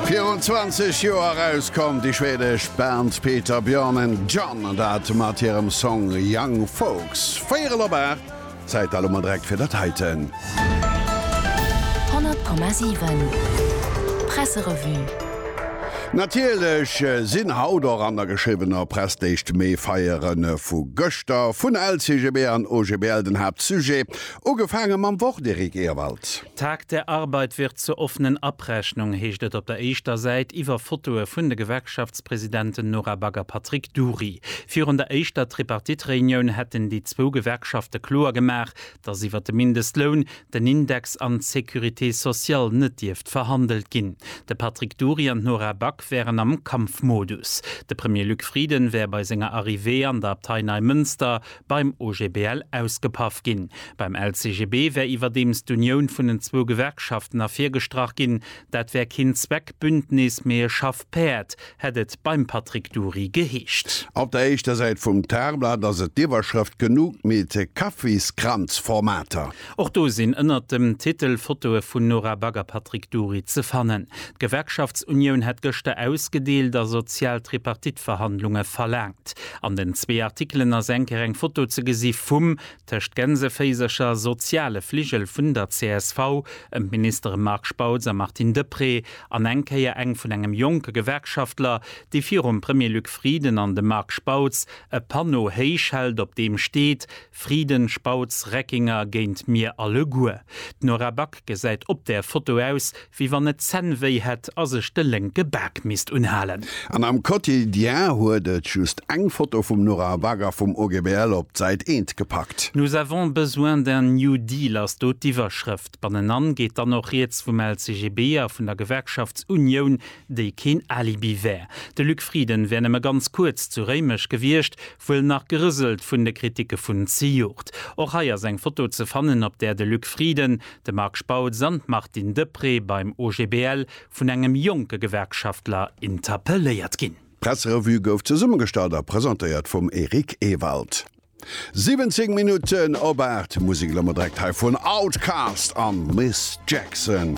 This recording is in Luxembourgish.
Virun 20 Joer erauskomm, déi schwedesch Band Peter, Björn and John, an dat mat hirem Song Young Folks. Véierel op 8, Zäit elo mol direkt fir dat heiten. 100,7 Presserevue Natierlech sinn haut och an der geschriwwener Press d'éischt Méifeiere vu gëschter vun LCGB an OGBL den Haaptsujet. Ugefaange mam Wort, Eric Ewald. Tag der Arbeit wird zur offenen Abrechnung, heescht et op der éischter Säit iwwer Fotoe vun de Gewerkschaftspresidenten Nora Back a Patrick Dury. Virun der éischter Tripartite-Reunioun hätten déi zwou Gewerkschafte kloer gemaach, datt iwwer de Mindestloun, den Index an d'Sécurité sociale net dierft verhandelt ginn. De Patrick Dury an d'Nora Back wären am Kampfmodus. De Premier Luc Frieden wär bei senger Arrivée an der Abtei Neimënster beim OGBL ausgepaff ginn. Beim LCGB wär iwwerdeems d'Unioun vun den zwou Gewerkschaften ervirgestrach ginn. Dat wär keen Zweckbündnis, mee e Schaffpäerd, hätt et beim Patrick Dury geheescht. Op der éischter Säit vum Tagblatt ass et d'Iwwerschrëft Genuch mit Kaffeeskranzformater. Och do sinn ënnert dem Titel Fotoe vun Nora Back a Patrick Dury ze fannen. D'Gewerkschaftsunioun hätt gëschter ausgedeelt a sozial Tripartite-Verhandlunge verlaangt. An den zwee Artikelen ass eng Kéier eng Foto ze gesi vum, tëscht Gänseféisercher, soziale Fligel vun der csv ëm d'Ministere Marc Spautz a Martine Deprez an eng Kéier eng vun engem jonke Gewerkschaftler, dee virum Premier Luc Frieden an dem Marc Spautz e Panneau héich hält, op deem steet, Frieden Spautz, Reckinger, Géint mir alleguer. D'Nora Back gesäit op där Foto aus, wéi wann et d'Zänn wéi hätt a sech de lénke Bak misst unhalen. An am Quotidien huet et just eng Foto vum Nora Back a vum OGBL op d'Säit eent gepackt. Nous avons besoin d'un New Deal ass do d'Iwwerschrëft. Bannenan geet dann och rieds vum LCGB a vun der Gewerkschaftsunioun, déi keen Alibi wär. De Luc Frieden wär nëmme ganz kuerz zu Réimech gewiescht, Wuel nach gerëselt vun de Kritike vun zejoert. Och hei ass eng Foto ze fannen, op där de Luc Frieden, de Marc Spautz an d'Martine Deprez beim OGBL vun engem jonke Gewerkschaftler interpelléiert ginn. D'Presserevue gouf zesummegestallt a presentéiert vum Eric Ewald. 17 Minutten op 8, Musek elo mol direkt hei vun Outkast an Miss Jackson.